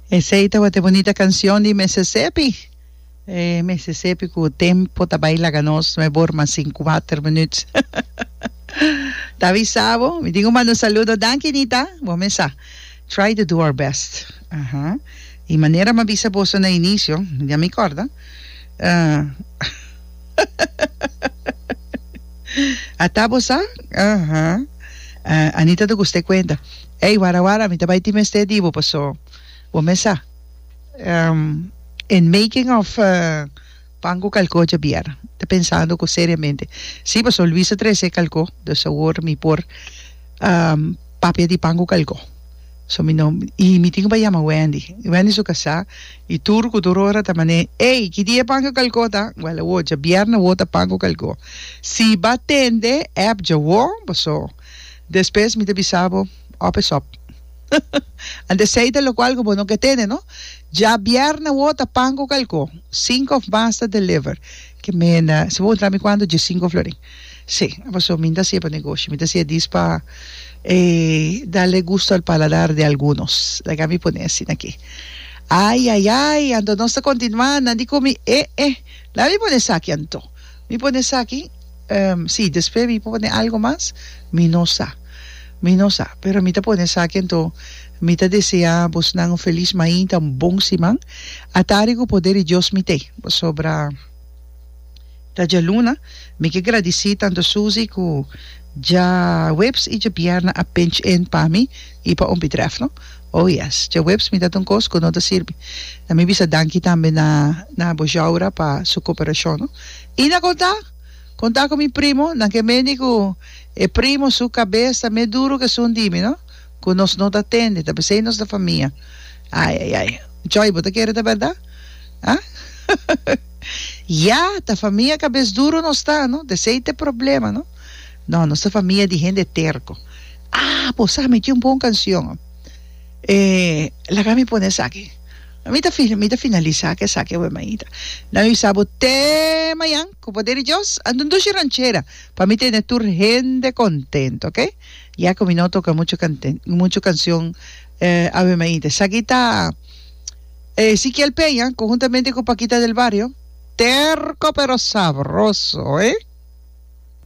Esey tabata e bonita cancion di Mississippi. E Mississippi cu tempo ta bay laga nos, no e bor mas sin cuater minuut. ta avisa bo, mi tin un manda un saludo. Danki Nita, bo mesa. Try to do our best. Aha. Y manera mi a bisa boso na inicio, ya mi corda. Uh, Ata bo sa? Aha. Uh, Anita ta gusta e cuenta. Ey, wara wara, mi ta bay tin mester di bo paso bo mes sa. Ehm, en making of pan cu calco djabier. Ta pensando cu seriamente. Si, paso Luis ta trece calco, dus awor mi por papia di pan cu calco. So mi no, y mi tin cu bay yama Wendy. Wendy su casa, y tur cu tur ora ta mane, Ey, ki dia e pan cu calco ta? Well, awor, djabier na wota pan cu calco. Si ba tende, ep djawo, paso. Despues mi ta bisa bo, Op es op. Anto sei ta locual cu bo no ke tene, no? Dja bièrnè wou ta pan cu calcó. Cinco of mas ta deliver. Ke menda. Si bo puntra mi cuantu, dje cinco florin. Sí. Paso mi n'ta hacié pa negoshi, mi ta hacié dis pa e darle gusto al paladar de algunos. Laga mi pone asina aki. Ai, ai, ai! Anto nos ta continuá nan di cumi. E, e! Laga mi pone esaki anto. Mi pone esaki, ehm, si, despues mi por pone algo mas? Mi no sa. Mi no sa. Pero mi ta pone esaki anto mi ta desea bosnan un felis mainta, un bon siman. A tari cu poder di Dios mi t'e. Pasobra ta djaluna. Mi ke gradici tanto Susie cu djaweps y djabierna a pinch in pa mi. I pa un bitrèf no. Oh yes. Djaweps mi ta ta un kos ku no ta sirbi. Na mi bisa danki tambe na na bo Jaura pa su koperashon no. I na konta? Konta ku mi primo, nan ke mendi ku e primo su kabes ta mes duru ku esun di mi no, ku nos no ta tende, ta p'esei nos ta famia. Ai ai ai. Joy, bo ta kere ta bèrdat? Huh? Ya, ta famia kabes duru nos ta no, t'esei t'e problema no. No, nos ta famia di hende terko. Ah, bo sa, mi tin un bon kansion. Eh, laga mi pone esaki. Mi ta, mi ta finalisá ku esaki awe, maita. Nan yu sa bo te mañan, ku poder di Dios, a dun dushi ranchera pa mi tene tur hende kontentu, oke? Ya ku mi no a toka muchu kanten, muchu kansion, eh, awe, maita. Esaki ta, eh, Ezikiel Peña konhuntamente ku Pakita del Bario, Terko pero sabroso, eh?